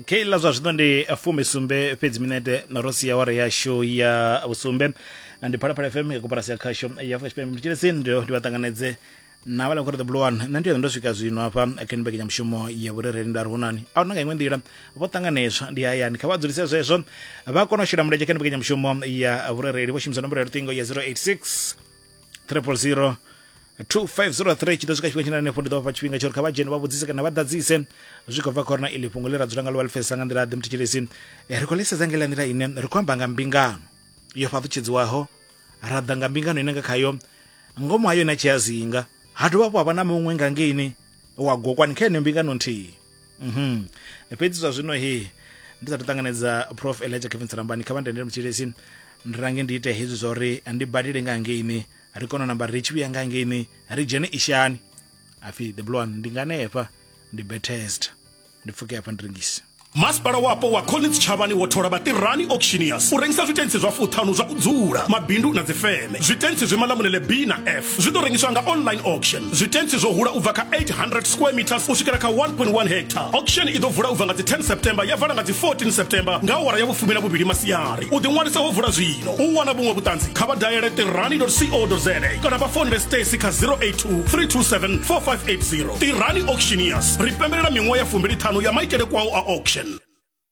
keiḽa zwa zwino ndi fumi sumbe fhedzi minete ro sia ware yashu ya vhusumbe na ndi phalaphala fm ya koporasi ya khasho ya afrika tshipembe mtshelesini ndo ndi vha ṱanganedze na vhala khori the blue one nṋe ndi yone ndo swika zwino hafha kha ndi mbekanyamushumo ya vhurereli nda ri hunani a huna nga iṅwe nḓila vho ṱanganedzwa ndi hayani kha vha dzulise zwezwo vha kona u shela mulenzhe kha ndi mbekanyamushumo ya vhurereli vho shumisa nomboro ya luṱingo ya 086 triple zero 2503 tshi ḓo swika tshifhinga tshine hanefho ndi ḓo vhafha tshifhinga tsho ri kha vha dzhene vha vhudzise kana vha ḓadzise zwi khou bva kha uri na iḽi fhungo ḽi ra dzula nga ḽo vha ḽi pfesesa nga nḓila ḓe muthetshelesi ri khou ḽisedza nga iḽa nḓila ine ri khou amba nga mbingano yo fhaṱutshedziwaho ra ḓa nga mbingano ine nga khayo ngomu ha yone a tshi a zinga ha dovha hafhu ha vha na muṅwe nga ngeini wa gokwani kha yeneyo mbingano nthihi mhm fhedzi zwa zwino he ndi sathu ṱanganedza prof elijah kevin tsalambani kha vha ndendele mutshilesi ndi range ndi ite hezwi zwa uri ndi badele nga ngeini ri kone u namba ri tshi vhuya nga ngeini ri dzhene ishani afi the blue one ndi nganefha ndi betest ndi pfuke hafha ndi rengise masipala wapo wa collins tshavhani wo thola vhatirani auctioneers u rengisa zwitentsi zwa fuṱhanu zwa u dzula mabindu na dzifeme zwitentsi zwi malamulele b na f zwi ḓo rengiswa nga online auction zwitentsi zwo hula u bva kha 800 square meters u swikela kha 1.1 hectare auction i ḓo vula u bva nga dzi 10 september ya vala nga dzi 14 september nga awara ya vhufumi na vhuvhili masiari u ḓiṅwalisa ho vula zwino u wana vhuṅwe vhuṱanzi kha vha dayele tirani co za kana vha fonele stacy kha 082 327 4580 tirani auctioneers ri pembelela miṅwaha ya fumbili ṱhanu ya maitele kwao a auction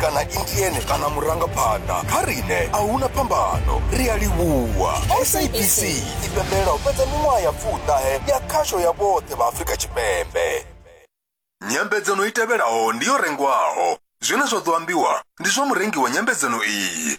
kana intiene kana murangaphanḓa kha rine a huna phambano ri a livhuwa sabc i pembelela u fhedza miṅwaha ya pfuṱahe ya khasho ya vhoṱhe vha afrika tshipembe nyambedzano i tevhelaho ndi yo rengwaho zwine zwa ḓo ambiwa ndi zwa murengi wa nyambedzano iyi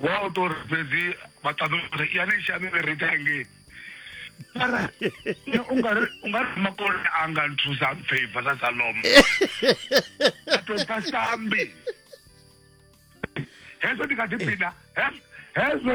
Wa u tori fhedzi vha ṱaḓa uri ya ni shami ri ita ngei. Mara ungari ungari makolo anga nthusa favor sa Salomo. Ato pasambi. Hezwo ndikati pina. Hezwo.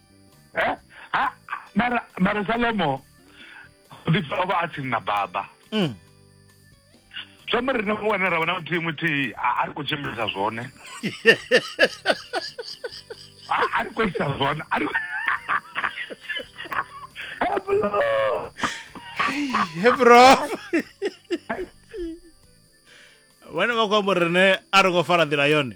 Eh? Ah, mara, mara Salomo, David o vha a tsini na baba. Mm. Zwi amba ri na mu wana ra vha na muthihi muthihi a a ri khou tshimbilisa zwone. A a ri khou isa zwone. A ri Heblo! he bro vhane vha khou amba uri rine a ri khou fara nḓila yone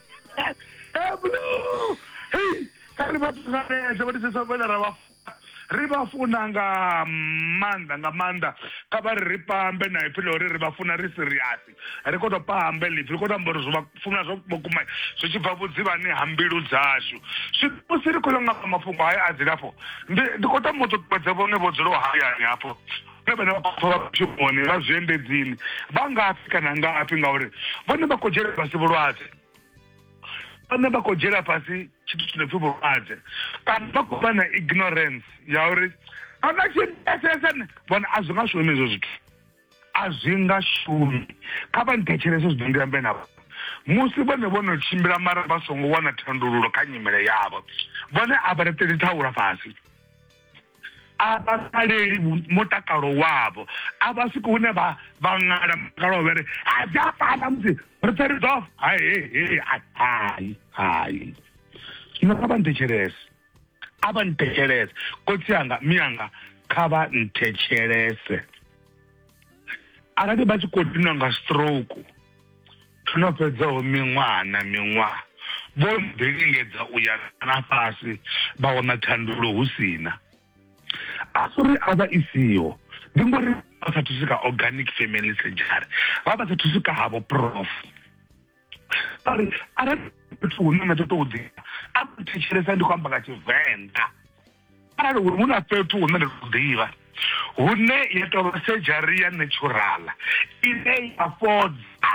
eblo hei kha ri vha ṱanganedze vha tisesa vhane ra vha funa ri vha funa nga maanḓa nga maanḓa kha vha ri ri pambe na ipfi ḽa uri ri vha funa ri siriasi ri kho to pambe ḽipfi ri kho to amba uri zwi vha funa zwa vhukuma zwi tshi bva vhudzivhani ha mbilu dzashu musi ri khou yo ngamba mafhungo haya a dzilafho ndi ndi khou tama u ṱuṱuwedza vhone vho dzulaho hayani hafho na vhane vha khou vha mishumoni vha zwiendedzini vha ngafhi kana ngafhi ngauri vhone vha khou dzhiela fhasi vhulwadze vhone vha khou dzhiela fhasi tshithu tshi no pfhi vhulwadze kana vha khou vha na ignorance ya uri a vha tshi pfesesa vhona a zwi nga shumi hezwo zwithu a zwi nga shumi kha vha nthetshelese zwi ḓo ndi ambe navho musi vhone vho no tshimbila mara vha songo wana thandululo kha nyimele yavho vhone a vha reṱeli thaula fhasi a vha saleli mutakalo wavho a vha swiki hune vha vha ṅala mutakalo wavho ri a dza fana musi ri pfe ri ḓofa hai hai hai zwino kha vha nthetshelese a vha nthetshelese kotsi anga miyanga kha vha nthetshelese arali vha tshi khou dinwa nga stroke Hu no fhedzaho miṅwaha na miṅwaha, vho no ḓi lingedza u ya nṱha na fhasi vha wana thandululo hu si na. A si uri a vha i siho, ndi ngori vha sa thusi kha organic family surgery, vha vha sa thusi kha havho prof. Vha ri arali fhethu hune na ṱoḓa u ḓi a thetshelesa ndi khou amba nga Tshivenḓa. arali uri hu na fhethu hune nda tou ḓivha hune ya tou vha sedzhari ya naturala ine ya fhodza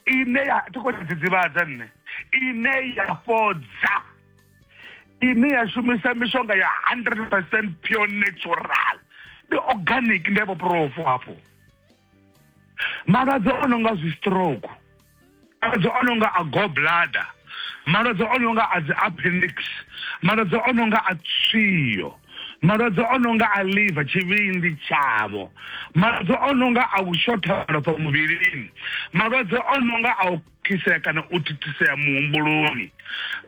ine ya thi khou dzidzivhadza nṋe ine ya fhodza ine ya shumisa mishonga ya 100 percent pure natural ndi organic ndi vho profo hafho malwadze o no nga zwistroke malwadze o no nga a goblada malwadze o no nga a dzi appendix malwadze o no nga a tswiyo malwadze o no nga a liver tshivhindi tshavho malwadze o no nga a u shotha malofha muvhilini malwadze o no nga a u khisea kana u thithisea muhumbuloni.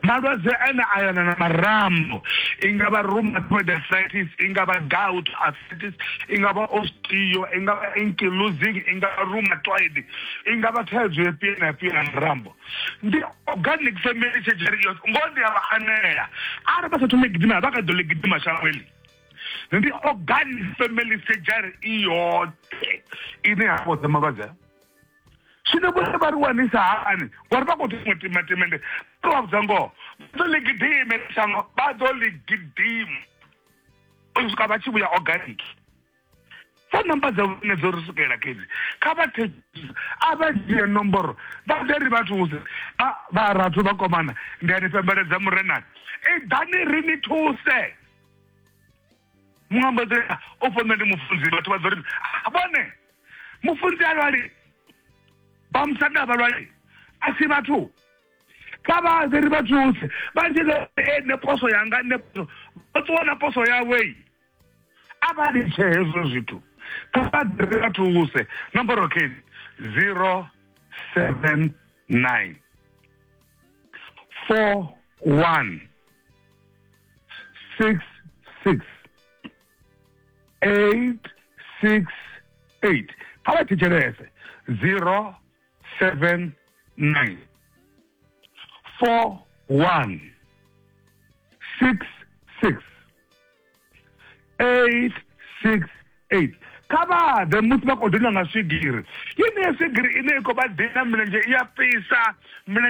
Malwadze ane a yelana na marambo i nga vha rheumatoid arthritis, i nga vha gout arthritis, i nga vha osteo, i nga vha ankylosing, i nga vha rheumatoid, i nga vha thaidzo ya fhio na fhio ya marambo. Ndi organic family surgery iyo ngoho ndi a vha anela arali vha sa thome gidima vha kha ḓo ḽi gidima shangoni ndi organic family surgery i yoṱhe ine ya fhodza malwadze zwino vhone vha ri wanisa hani ngori vha khou thoma tima timende vha vha vhudza ngoho vha ḓo ḽi gidime shango vha ḓo ḽi gidima u swika vha tshi vhuya organic sa namba dza vhone dzo ri swikelela kezi kha vha thekisa a vha dzhie nomboro vha ḓe ri vha thuse vha rathu vha komana ndi a ni pembeledza murenani i ḓani ri ni thuse muambadzela o fha nṋe ndi mufunzi vhathu vha ḓo ri "Ah, vhone mufunzi a lwali vha musanda a vha lwali a si vhathu kha vha ḓe ri vha thuse vha tshi ḓo e nṋe poso yanga nṋe poso vha ṱuwa na poso yawei a vha litshe hezwo zwithu kha vha ḓe ri vha thuse nomboro keni zero seven nine four one six six eight six eight kha vha thetshelese zero seven nine four one six six eight six eight kha vha ḓe musi vha khou dina nga swigiri yeneyo swigiri ine i khou vha dina milenzhe i ya fhisa milenzhe